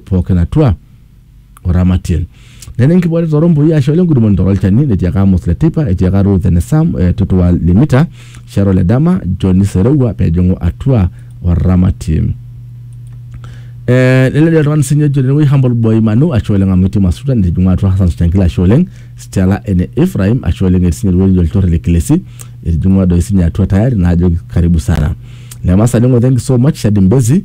pookin atua oramatie nena enkibooreta torombui ashu ole ngudumoni torolchani netiaka Amos le teipa etiaka Ruth ene Sam eh, Tutua le Mita Sharo le dama John Serewua pejing'u atua oramatie Eh, lele oltung'ani sinye ojo tenewueji Humble Boy Manu ashe oleng amu etii Masuta nitijing'ua atua Hassan Chankila ashe oleng Stella ene Ephraim ashe oleng etii sinye ewueji olchore le Kilesi etijing'ua doi sinye atua tayari naajoki karibu sana Lemasaning'o thank you so much Shadi Mbezi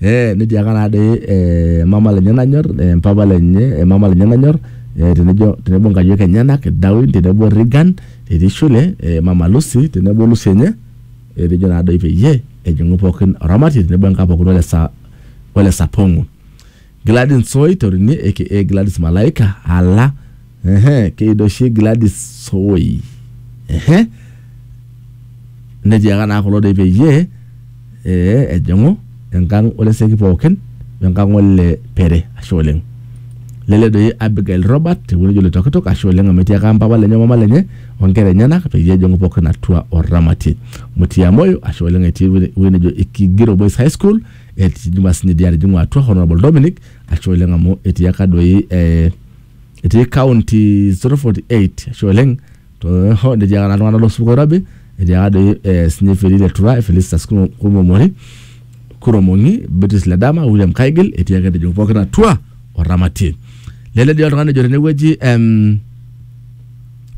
Eh, netiaka naa doi eh, mama lenye nanyor eh, mpapa lenye eh, mama lenye nanyor eh, tenejo tenebo nkayiok enyenak Darwin tenebo Regan etii shule eh, mama Lucy tenebo Lucy enye etejo naa doi peyie ejing'u pookin oramatie tenebo enkaa pookin ole sa ole sapong'u Gladys Nsoi Torine aka Gladys Malaika ala Ehe, keyido oshi Gladys Soi. Ehe. Netiaka naa kulo doi peyie ee ejing'u enkang oleseki pookin wenkang ole Pere. Ashe oleng. Lele doi Abigail Robert tewueji nejo Loitokitok, ashe oleng amu etiaka mpapa lenye omama lenye onkera enyenak peyie ejing'u pookin atua oramatie. Mutia Moyo, ashe oleng etii ewueji nejo Ikigiro Boys High School, etujumaa sinye dii atijing'u atua Honourable Dominic, ashe oleng amu etiaka doi ee etii county 048 ashe oleng too netiaka naa iltung'anak losupuko oirobi etiaka doi eh, sinye feli le tura felistas Kumo- kumomori kuromong'i beatrice ledama william kaigil etii ake etejo pookin atua oramatie lele dii oltung'ani ejo tenewueji em,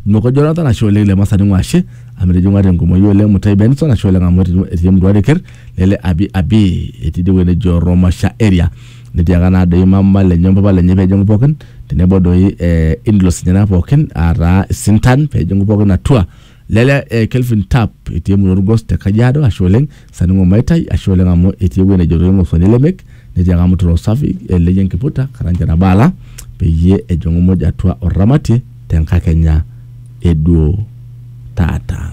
Noko Jonathan ashe oleng le Masani Ng'washe amu etijing'ua tenkumoyu oleng Mutai Benson ashe oleng amu etijing'ua- etii emurua Reker lele Abi Abi etii idie wueji nejo Romasha area netiaka naa doi mama lenye ompapa lenye peejing'u pookin tenebo doi eh, in-laws enyena pookin ataa isintan peejing'u pookin atua lele eh, Kelvin Tap etii emurua Olgos te Kajiado ashe oleng Saningo Maitai, ashe oleng amu etii ewueji nejo toi ng'osoni lemek netiaka amu tiro safi elei enkiputa Karanja Nabaala peyie ejong'u muj atua orramatie te nkakenya e duo taata.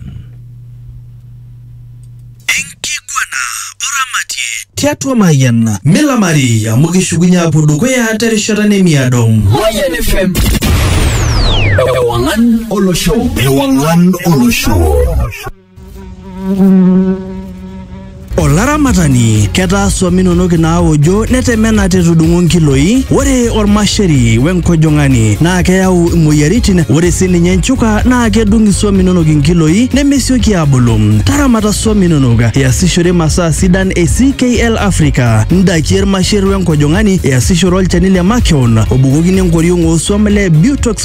Enkiguana orramatie tiatua Mayian. Milamari amu kishukunye aapuo dukuya te rishata nemiado. Mayian FM. Ewang'an olosho. Ewang'an olosho. Olaramatani, ketaa swam inonok inaaojo netemena tetudung'o nkiloi. Ore olmasheri wenkojong'ani naa keyau imoyiaritin. Ore sii ninye nchuka naa kedung iswam inonok inkiloi nemesioki aabulu. Taramata swam inonok iasishore masaa sidan e CKL Africa, ndakie ilmasher wenkojong'ani, iasishore olchani le makeon obukokini enkoriong oo swam le Butox